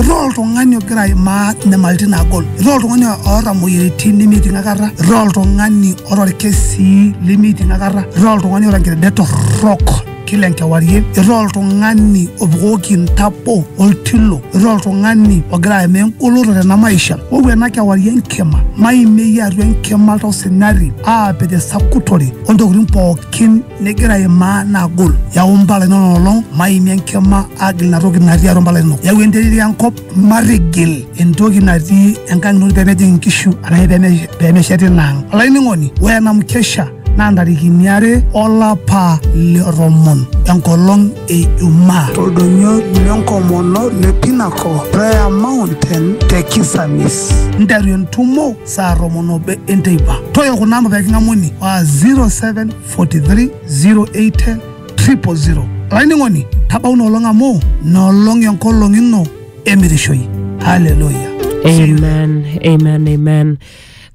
Irriwaa oltung'ani ogira aimaa inyamalaritin naagol, irriwaa oltung'ani oota imoyiaritin nemeiting akata, irriwaa oltung'ani oota ilkesii lemeiting akata, irriwaa oltung'ani oota nkirridet torrok kila enkewarie, irriwaa oltung'ani opukoki intabo oltilo, irriwaa oltung'ani ogira aimaa engoloto tena maisha. Wou ena kewarie enkima, maimieyie atua enkima oltau sinyati aapik esakutore o ntokitin pookin nigira aimaa naagol yau mpala inono olong maimie enkima agil ina toki natii atua mpala inono yau enterit enkop matigil entoki natii enkang ino pemejing inkishu arashu peme- pemeshet ina ang olainining'oni ore ena mkesha naa ntarikini are olapa le tomon enkolong e ijumaa toldonyo lenkomono le Pinnacle Prayer Mountain te Kisamis. nteru entumo saa tomon obo enteipa toyo kuna amba peking'amuni wa 0743081000 olainining'oni tabau inolong amu nolong enkolong ino emirishoi haleluya amen amen amen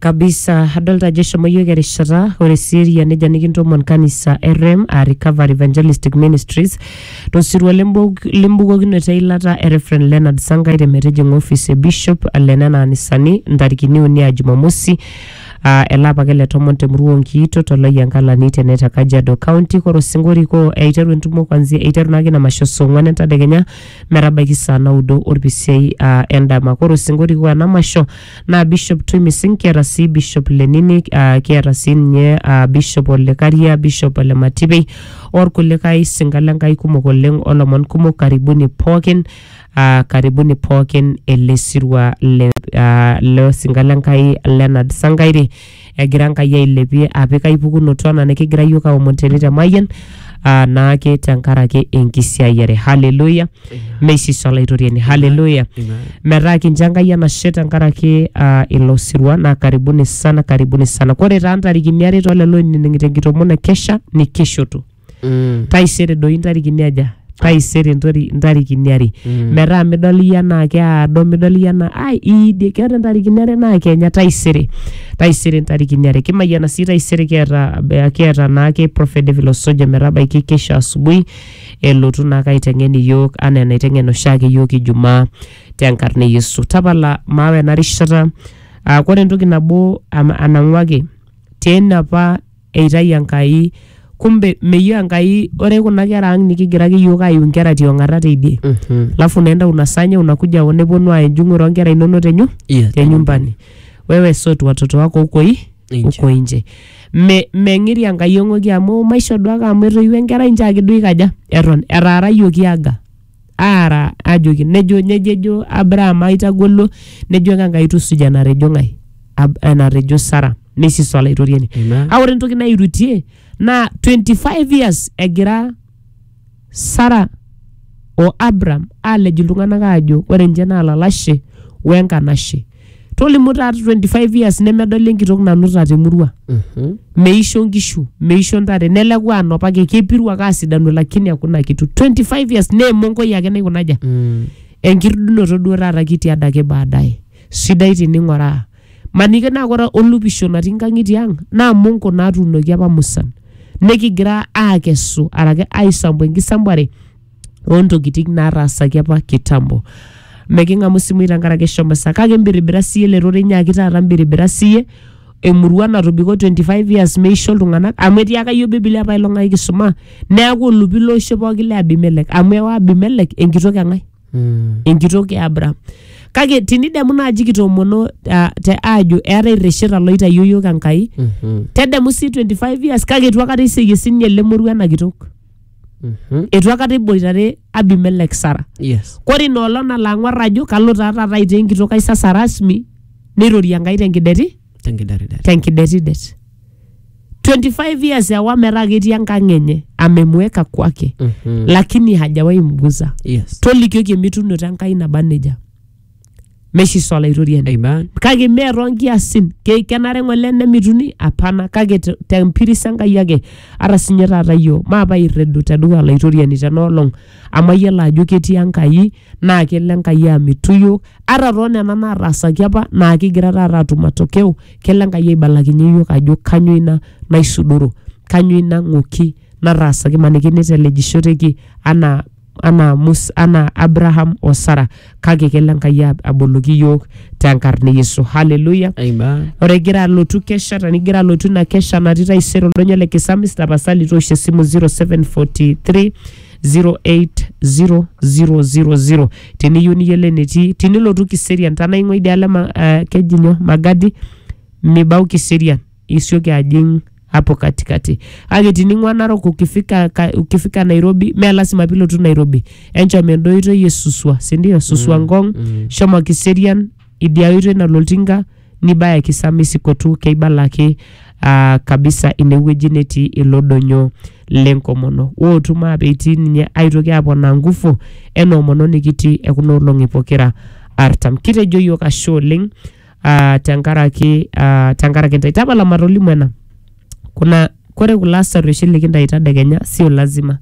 kabisa adolta ajo eshomo yiok erishata ore sii eria neja nikintomon kanisa e rem aa recovery evangelistic ministries Tosirua lembok- lembukokinoto eilata e Rev Leonard Sangai te metijing'a ofis e Bishop le nena anisani ntarikini uni aa Jumamosi aa ele apa ake le tomon te murua Onkiito to Loyiankalani te Neta Kajiado County. Kore osingo orikoo eiteru entumo kwanzia eiteru naake ina masho saa ong'wan entadekenya metabaiki saa naudo olpisiai aa endama. Kore osingo orikoo ena masho naa Bishop Twimising, kiata sii Bishop Lenini, ah, kiata sii ninye ah, Bishop Olekaria, Bishop Ole Matipei orkulikae sinka le Nkai kumok oleng olomon kumok karibuni pookin ah, karibuni pookin ele sirua le ah, le sinka le Nkai Leonard Sankaire egira Enkai ailepie apik ai pukunoto anaa nikigira iyiook aomon tene te Mayian aa naake tenkaraki enkisiayiare haleluya meisisa olaitoriani haleluya metaa kincho Enkai enashe tenkaraki aa ilo sirua naa karibuni sana karibuni sana kore taa ntarikini are too lelo oinining'ito enkitomon e kesha nikishutu. Mm. taisere doi ntarikini aja taisere ntori- ntarikini are Mm. metaa midol iyie anaa keado midol iyie anaa ai iidie keeta ntarikini are naa kenya taisere taisere ntarikini are kimayiana sii taisere kiata kiata naake prophet David Osoja metabaiki kesho asubuhi elotu naake aiteng'en iyiook anaa enaiteng'en oshiake iyiook ijumaa tenkarna e Yesu tapala maawa ena rishata aa kore entoki nabo am- anang'uaki tena apa eitayu Enkai. Kumbe meyieu Enkai ore kuna kera ang nikigira ake iyiook aiu nkera tiong'ata teidie. Mhm. Alafu naenda unasanya unakuja hapa neponu aaya enjung'ore oonkera inonok tenyu Iya, te nyumbani. Wewe sort watoto wako huko i Nje. huko nje. Me meng'iri Enkai eng'oki amu maisho duake amu etoiwuo enkerai nchoo ake duo ikaja eton etaara iyiook iaga. aara ajoki nejo nejo ejo Abraham aitagolo nejo ake Enkai tusuja enatejo ng'ae Ab- enatejo Sara neisis olaitoriani Amen. a ore entoki nairutie naa 25 years egira Sara o Abraham aalej iltung'anak aajo ore ninche naa lalashe wenkanashe tolimu taata 25 years nemedoli enkitok nanuta temurua Mhm. meisho nkishu meisho ntare neleku anopake kepiru ake asidanu lakini hakuna kitu 25 years naa emonkoi ake naikunaja Mm. enkirudunoto duo taata kitii adake baadaye sidai tining'oraa maniki naa kore olupisho natii nkang'itie ang naa monko naatuunoki apa musan nikigira aakesu arake aisambu enkisambuare ontokitin naataasaki apa kitambo meking'amu isimui tenkaraki eshomo sa kake imbiribira siye ele rorei nyaaki taata imbiribira siye emurua natobiko 25 years meisho iltung'anak amu etiaka yiok bibilia apailong ai kisuma neaku olupi loisho pooki le abimelek amu ewa abimelek enkitok eng'ae Mm. enkitok e Abraham. Kake tinidemu naaji kitoomono uh, te aajo eetae irresheta loitayio yiok Enkai, Mhm. tedemu sii 25 years kake eitu akata iseyie sininye ele moruo ena kitok. Mhm. eitu akata eboitare abimelek sara Yes. kore ina olong nalo ang'uar ajo kalo taa taata aitaa enkitok ai sasa rasmi neirorie enkai tenkideti Tenkidaridari. tenkidetidet 25 years ewa metaa ketii enkang enye amemweka kwake Mhm. lakini hajawahi mguza Yes. tolikioki emitunoto enkai naba nejia Meshiso Olaitoriani. Amen. kake mee toonkiasin Ke- kenare ng'ole nemituni apana kake te- tempiris enkai ake ata sinye taata iyio maapa irredu tedukuya olaitoriani tenaolong amu ayiolo ajo ketii enkai naa kelo enkai amitu iyiook ata toonena naataasaki apa naa kigira taata atum matokeo kelo enkai aibalakinye iyiook ajo kanyoo ina naisudoro kanyoo ina ng'oki nataasaki maniki nitelejishoteki anaa anaa Mus anaa Abraham o Sara kake kelo Enkai ab- aboloki iyiook tenkarna e Yesu. Haleluya! Amen. Ore igira alotu kesha tenigira alotu ina kesha natii taisere oldonyo le Kisamis tapasali toosho esimu 0743 080000 teniyieu niyiolo enetii tinilotu Kiserian tanaa ing'ua idialo e ma- eh, keji nyoo Magadi mibau Kiserian isioki ajing hapo katikati kake tining'ua narok ukifika, ka, ukifika nairobi mee lasima pilotu nairobi enchom enda oitoi e suswa sindio suswa mm, ngong mm. shomo kiserian idia oitoi nalo oltinka nibaya kisamesikotu keibala ake uh, kabisa inewueji netii ilo donyo lenkomono wootu maape itii ninye aitoki aponaa ngufu ena omono nikitii ekuna olong'i pokira artam kitejo yiok ashe oleng ah, tenkaraki ah, tenkaraki ntae tapala matolimu ena kuna kore kulo asar oshi likintai tadekenya sio lazima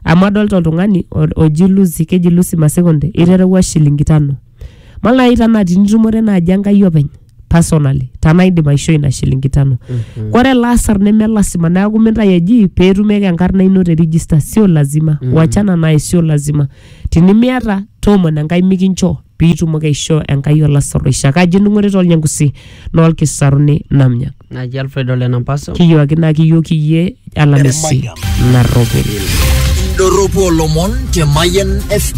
amu adolta oltung'ani o- oji lusi keji lusi masekonde iterewua shilingi tano malai tanaa tinitumore naaji enkai openy personally tanaa indim aishoo ina shilingi tano kore ele asar neme lasima neeku mintai eji peetumieki enkarna ino te register sio lazima wachana naye sio lazima Tinimiata, toomono Enkai mikincho, pee itumoki aishoo Enkai olasarruoisha. Kaji ening'orita olnyangusi naa olkisaruni namnya. Naji Alfred Ole Nampaso. Kiyooki naa kiyooki iyie alamisi narropil. Indorropu olomon te Mayian FM.